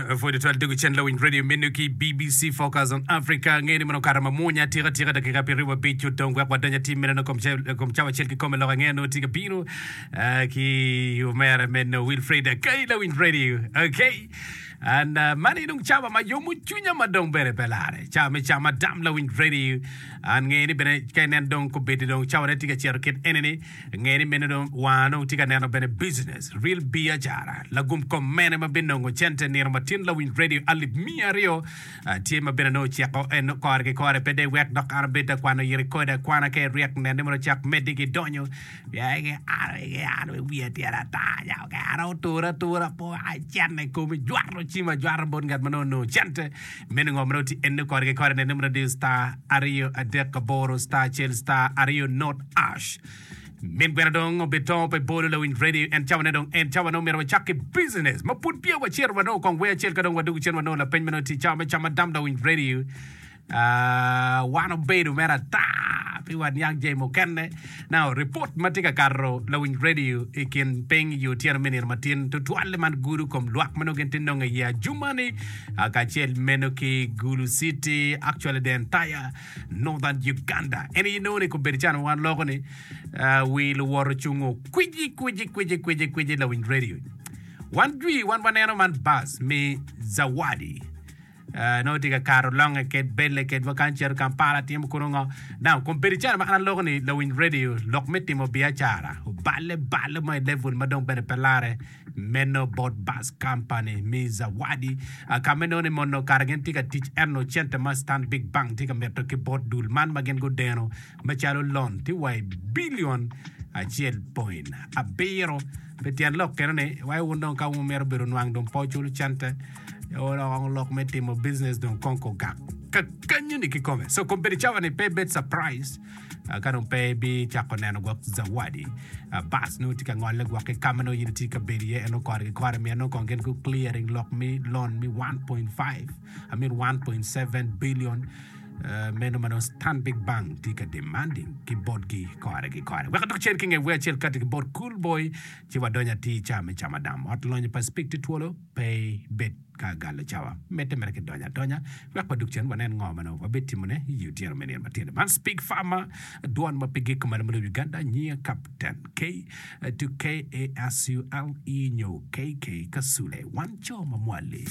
Pwod itwal tego cen lawiny radio meno ki BBC Focus on Africa. Angeyo ni meno okato mamwonya atika atika, dakika apiraryo mabic odong wek wadony atir meno i kom cawa acel kikome. Lok angeyo nongo tye ka bino ah, ki omera meno Wilfred Akai, lawiny radio. Okay. And uh, mani dong cawa ma yomo cwinya ma dong bene pe lare. Cawa me cam adam lawiny radio. An ngeyo ni bene ka inen dong kobedi dong cawane tye ka cito kit eni-ni. Nge ni meno dong wanga dong tye ka neno bene business, real biacara. Lagum kom mene ma binongo cente nino matin lawiny radio alip miya aryo tye ma bene nongo ociko en kore ki kore pe dek wek dok an abed ta kwano yiri kode akwana ka iryek nene mono cak medi ki donyo ya ege an ege an we wiya tyer ata ya ege an otura tura po acen i komi jwato cima jwato bot ngat ma nongo nongo cente Me ningo mere oti ene kore ki kore nene mere diyo star aryo adek aboro star acel star aryo not ash. Min gweno dong obi tongo pe bolo lawiny radio en cawane dong en cawane omyero wacak ki business ma pud peya wacito wanongo kong wer acel ka dong wadugu cen wanongo lapeny meno ti cawa me cama dam lawiny radio ah, wan obedo mere ata pi wat niang jay mukene Now, ripot ma tye ka kato lawiny redio i kin piny i otyeno me nino matin tutwal-li man gudo kom lwak ma nongo gin ti nongo iye ajuma-ni kacel meno ki Gulu City, actually the entire Northern Uganda. En aye nongo ni kobedo can wan loko ni uh, wi luwot ocungo kwiji kwiji kwiji kwiji kwiji lawiny redio. Wan jwi wan waneno man bus me Zawadi. Eh, nongo tye ka kato longe ked belle ked wa kan cito Kampala timo kunu ngo. Now, kun bedo calo ma an aloko ni lawiny radio lok me timo biacara oballe balle mo i level ma dong bene pe lare meno bot bus company me Zawadi ah, ka me nongo ni mono kara gin tye ka tic eno cente ma Stanbic Bank tye ka mito ki bot dul man ma gin gudeno macalo lon tye wa i bilion acel point abiro. Pi tyen lok keno ni, wai wun dong ka wun wumito bedo nwang dong pe wucul cente Oloko lok me timo business dong kong kugak kakanyoni kikome. So kong bedi cawa ni pe bed surprise ah, ka dong pe bi cako neno gwok zawadi. Ah, Bas nongo tye ka ngole gwok ki kama nongo in itye ka bedo iye en okore ki kore miyo nongo kong gin gu clearing lok mi loan mi 1.5 I mean 1.7 billion ah, meno ma nongo Stanbic Bank tye ka demanding ki botgi kore ki kore. Wek adok cen ki nge wer acel kati ki bot Cool Boy ci wadony atir ca me camadam. Ot lonyo pa Spik tye twolo. pe ibed ka agalo cawa. Medde mere ki donyo adonya wek wa dug cen wanen ngo ma nongo wabed timo ne iyi otyeno me nino matino. Man Speak Farmer, dwon ma pe giko malo ma lobo Uganda, nyinga Captain K to KASULE nyo KK Kasule, wan co ma mwali.